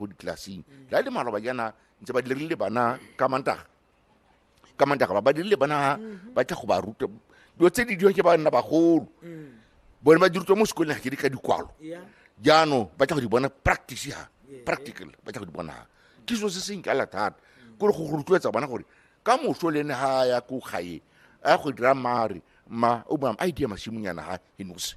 ko ditlelaseng la le malwa ba jana ntse ba dirile bana ka mantaga ka mantaga ba ba dirile bana ba tla go ba ruta dilo tse di diwa ke ba nna bagolo bone ba dirutwa mo sekoleng ga ke di ka dikwalo Yeah. jaanong ba tla go di bona practice ha practical ba tla go di bona ha ke selo se se nkala thata kore go go rotloetsa bana gore ka moso le ene ga a ya ko gae a go dira mare ma o ba a idea masimonyana ga e nose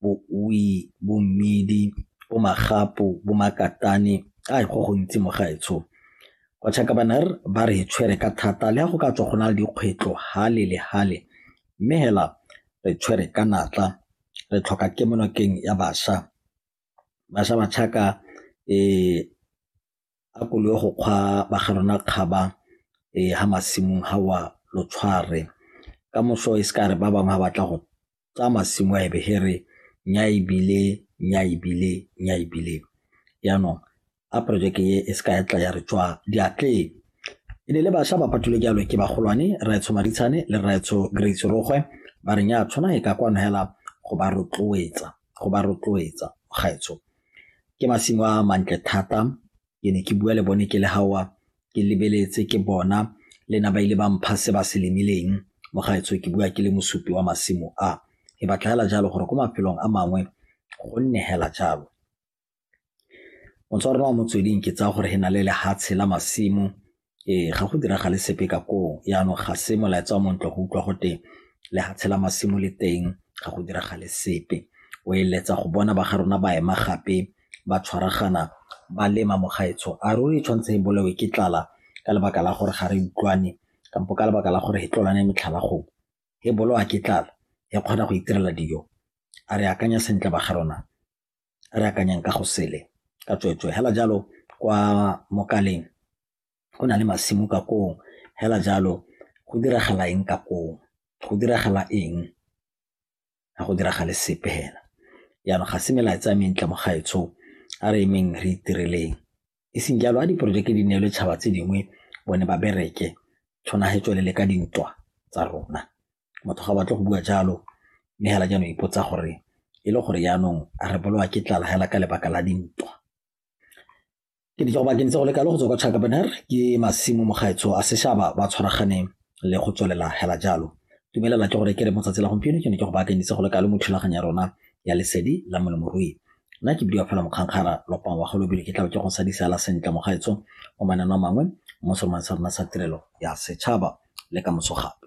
bouwi, bo mmidi, bo magapu, bo makatane a go gontsi mo gaetsho. Bachabanner ba re tshwere ka thata le go ka tswa go na le dikgwetlho hale le hale mme hela re tshwere ka natla re tlhoka kemonokeng ya bašwa. Bašwa ba tšhaka . a ko le go kgwa ba ga rona kgaba um ha masimong ha wa lo tshware ka moso e se ka re ba bangwe ga batla go tsaya masimo a ebe he re nya ebile nya ebile nya ebile yaanong a projeke e e se ka ya tla ya re tswa diatleng e ne le bašwa ba phatulwe jalo ke bagolwane raetsho maditshane le raetsho grace rogwe ba re nya tshwana e ka kwano hela go ba rotloetsa go ba rotloetsa gaetsho Ke masimo a mantle thata ke ne ke bua le bone ke le gaowa ke lebeletse ke bona le na ba ile ba mpha se ba se lemileng mo gaetsho ke bua ke le mosupi wa masimo a e batla hela jalo gore ko mafelong a mangwe go nne hela jalo motswa rona wa motsweding ke tsaya gore he na le lehatshe la masimo Ee, ga go diragale sepe ka koo yaanong ga se molaetsa wa montlo go utlwa go te le ga tshela masimo le teng ga go diragale sepe o eletsa go bona ba ga rona ba ema gape ba tshwaragana ba lema mogaetsho a ruri e tshwanetse e bolewe ke tlala ka lebaka la gore ga re utlwane kampo ka lebaka la gore e tlolane metlhala gong e bolowa ke tlala e kgona go itirela dijo a re akanya sentle ba ga rona re akanyang ka go sele ka tsweetswee hela jalo kwa mokaleng go na le masimo ka koo hela jalo go diragala eng ka koo go diragala eng ga go diragale sepe hela jaanong ga se melaetsa a mentle mo gaetsho a re emeng re itireleng e seng jalo a diporojeke di neelwe tšhaba tse dingwe bone ba bereke tshwana he tswelele ka dintwa tsa rona batho ga batle go bua jalo mme hela jaanong ipotsa gore e le gore jaanong a re bolowa ke tlala hela ka lebaka la dintwa ke ditso go bakeng tse go lekalo go tswa kwa chakabaner ke masimo mogaetsho a seshaba ba tshwaraganeng le go tswelela hela jalo dumelela ke gore ke re motsatsi la gompieno ke ne ke go baakanyitse go lekalo mo thulaganyo ya rona ya lesedi la molemorui nna ke bidiwa fela mokgankgara lopang wa golobile ke tlabe ke go sadisa la sentle mogaetsho o manano a mangwe mo seromane sa rona sa tirelo ya setšhaba le ka moso gape